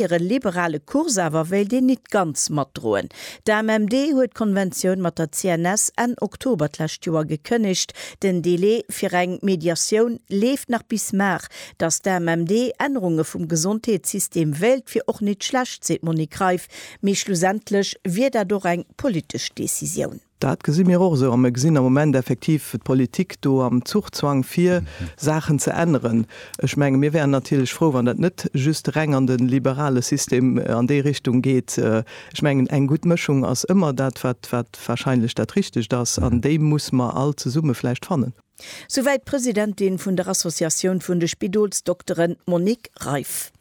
Hire liberale Kurs awer wéilt een nit ganz matdroen. D'AMMD huet d'Konventioun mat der CNS Enn Oktober d'lescht Joer gekënnegt. Den Delai fir eng Mediatioun leeft nach bis Mar. Datt d'AMMD Ännerunge vum Gesondheetssystem wéilt, wier och nit schlecht, seet d'Monique Reiff. Mee schlussendlech wier dat och eng politesch Decisioun. Dat gesi mir och esou. A mir gesinn am Moment effektiv d'Politik do am Zuchzwang, fir Saachen ze änneren. Ech menge mir wäeren natierlech frou, wann dat net just reng an de liberale System an déi Richtung geet. Ech mengen eng gutt Mëschung ass ëmmer dat, wat wahrscheinlech dat Richtegt ass, an déi muss mer all zesumme vläicht fannen. Souwäit d'Presidentin vun der Associatioun vun de Spidolsdokteren, d'Monique Reiff.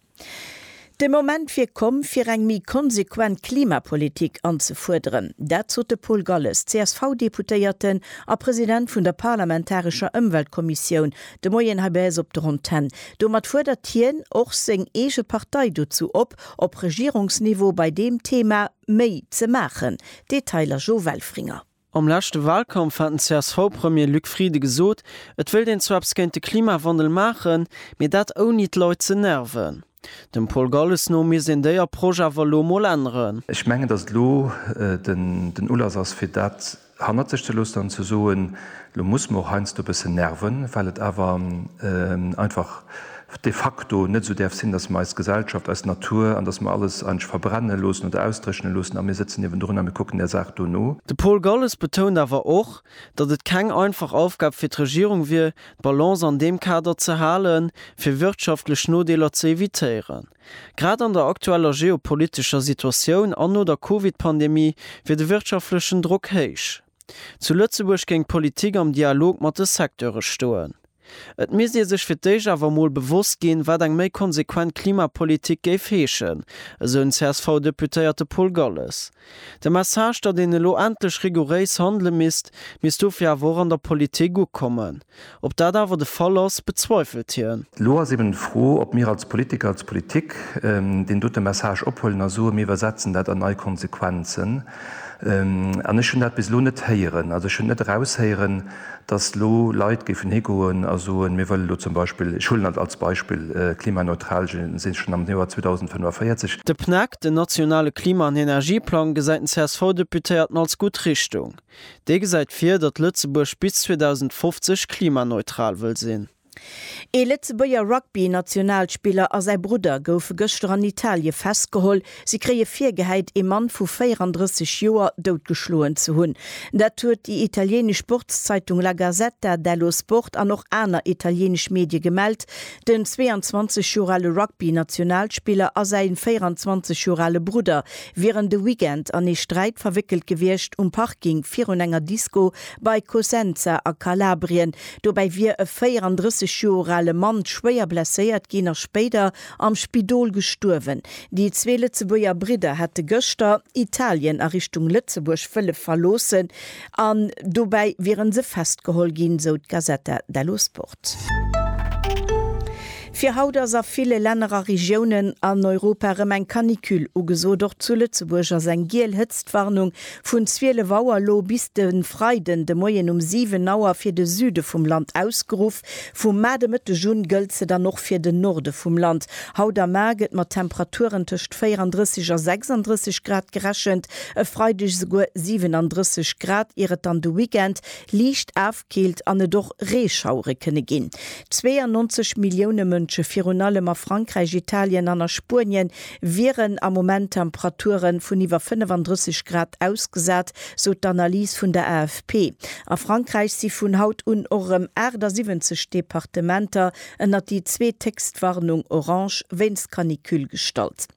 De Moment wier komm, fir eng méi konsequent Klimapolitik anzefuerderen. Dat sot de Paul Galles, CSV-Deputéierten a President vun der parlamentarescher Ëmweltkommissioun, de Moien hei bei eis op der Antenn. Domat fuerdert hien och seng eege Partei dozou op, op Regierungsniveau bei deem Thema méi ze maachen. Detailer Jo Welfringer. Am leschte Walkampf hat den CSV-Premier Luc Frieden gesot, et wéilt een zwar eppes géint de Klimawandel maachen, mee dat ouni d'Leit ze nerven. Dem Paul Galles no misst een déi Approche awer elo emol änneren. Ech mengen, datt et elo den Ulass ass fir dat hannert sech ze loossen an ze soen, elo muss mer och heiansdo e bëssen nerven, well et awer einfach de facto net esou däerf sinn, datt mer eis Gesellschaft, eis Natur an datt mer alles eigentlech verbrenne loossen oder ausdréchne loossen a mir sëtzen niewendrun a mir kucken där Saach do no. De Paul Galles betount awer och, datt et keng einfach Aufgab fir d'Regierung wier, d'Balance an deem Kader ze halen, fir wirtschaftlech Nodeeler ze evitéieren. Grad an der aktueller geopolitescher Situatioun an no der Covid-Pandemie wier de wirtschaftlechen Drock héich. Zu Lëtzebuerg géing d'Politik am Dialog mat de Secteure stoen. Et misst ee sech fir d'éischt awer emol bewosst ginn, wat eng méi konsequent Klimapolitik géif heeschen, esou den CSV-Deputéierte Paul Galles. De Message, datt een elo endlech rigouréis handele misst, misst dofir awer och an der Politik ukommen. Ob dat awer de Fall ass, bezweifelt hien. Elo ass eben d'Fro, ob mir als Politiker, als Politik deen dote Message ophuelen a soen, mir iwwersetzen dat an nei Konsequenzen. An ech hunn dat bis elo net héieren. Also ech hunn net eraushéieren, datt elo Leit géifen higoen a soen, mir wëllen elo zum Beispill, ech huelen et als Beispill, klimaneutral si schonn am Joer 2045. De PNEC, den nationale Klima an Energieplang, gesäit den CSV-Deputéierten als gutt Richtung. Dee gesäit vir, datt Lëtzebuerg bis 2050 klimaneutral wëll sinn. Ee Lëtzebuerger Rugby-Nationalspiller a säi Brudder goufe gëschter an Italie festgeholl. Si kréie virgehäit, ee Mann vu 34 Joer doutgeschloen ze hunn. Dat huet déi italieenesch Sportszeitung La Gazzetta dello Sport an och aner italieenesch Medie gemellt. Den 22 Joer ale Rugby-Nationalspiller a säi 24 Joer ale Brudder wieren de Weekend an ee Sträit verwéckelt gewiescht um Parking virun enger Disco bei Cosenza a Kalabrien. Dobäi wier e 34 Joer ale Mann schwéier blesséiert ginn a spéider am Spidol gestuerwen. Déi zwee Lëtzebuerger Bridder hätte gëschter Italien a Richtung Lëtzebuerg wëlle verloossen an dobäi wiere se festgeholl ginn, sou d'Gazzetta dello Sport. Fir haut ass a ville Länner a Regiounen an Europa erëm eng Canicule ugesot. Och zu Lëtzebuerg ass eng giel Hëtztwarnung vun 12 Auer elo bis de Freiden de Moien um 7 Auer fir de Süde vum Land ausgeruff. Vum Mar de Mëtteg un gëllt se dann och fir den Norde vum Land. Haut am Mar gëtt mat Temperaturen tëscht 34 a 36 Grad gerechent, e Freideg esouguer 37 Grad, ier et dann de Weekend liicht Keelt an et och Reeschauere kënne ginn. 92 Millioune Mënsche, virun allem a Frankräich, Italien an a Spuenien, wieren am Moment Temperature vun iwwer 35 Grad ausgesat, sou d'Analys vun der AFP. A Frankräich si vun haut un och erëm 78 Departementer ënnert déi zweethéchst Warnung, orange, wéinst Canicule gestallt.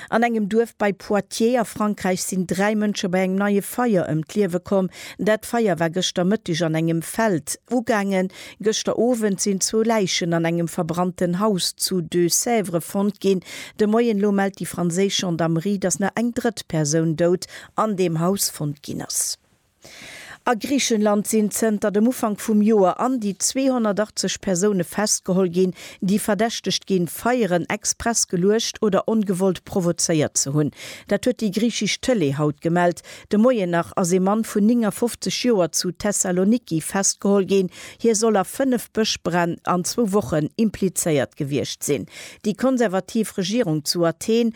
An engem Duerf bei Poitiers a Frankräich sinn dräi Mënsche bei engem neie Feier ëm d'Liewe komm. Dat Feier war gëschter Mëtteg an engem Feld ugaangen. Gëschter Owend sinn zwou Läichen an engem verbrannten Haus zu Deux-Sèvres fonnt ginn. De Moien elo mellt déi franséisch Gendarmerie, dass nach eng drëtt Persoun dout an deem Haus fonnt ginn ass. A Griichenland sinn zënter dem Ufank vum Joer an déi 280 Persoune festgeholl ginn, déi verdächtegt ginn, Feieren express geluecht oder ongewollt provozéiert ze hunn. Dat huet déi griichesch Tëlee haut gemellt. De Moien nach ass ee Mann vun 59 Joer zu Thessaloniki festgeholl ginn. Hie soll a fënnef Bëschbränn an zwou Wochen implizéiert gewiescht sinn. Déi konservativ Regierung zu Athen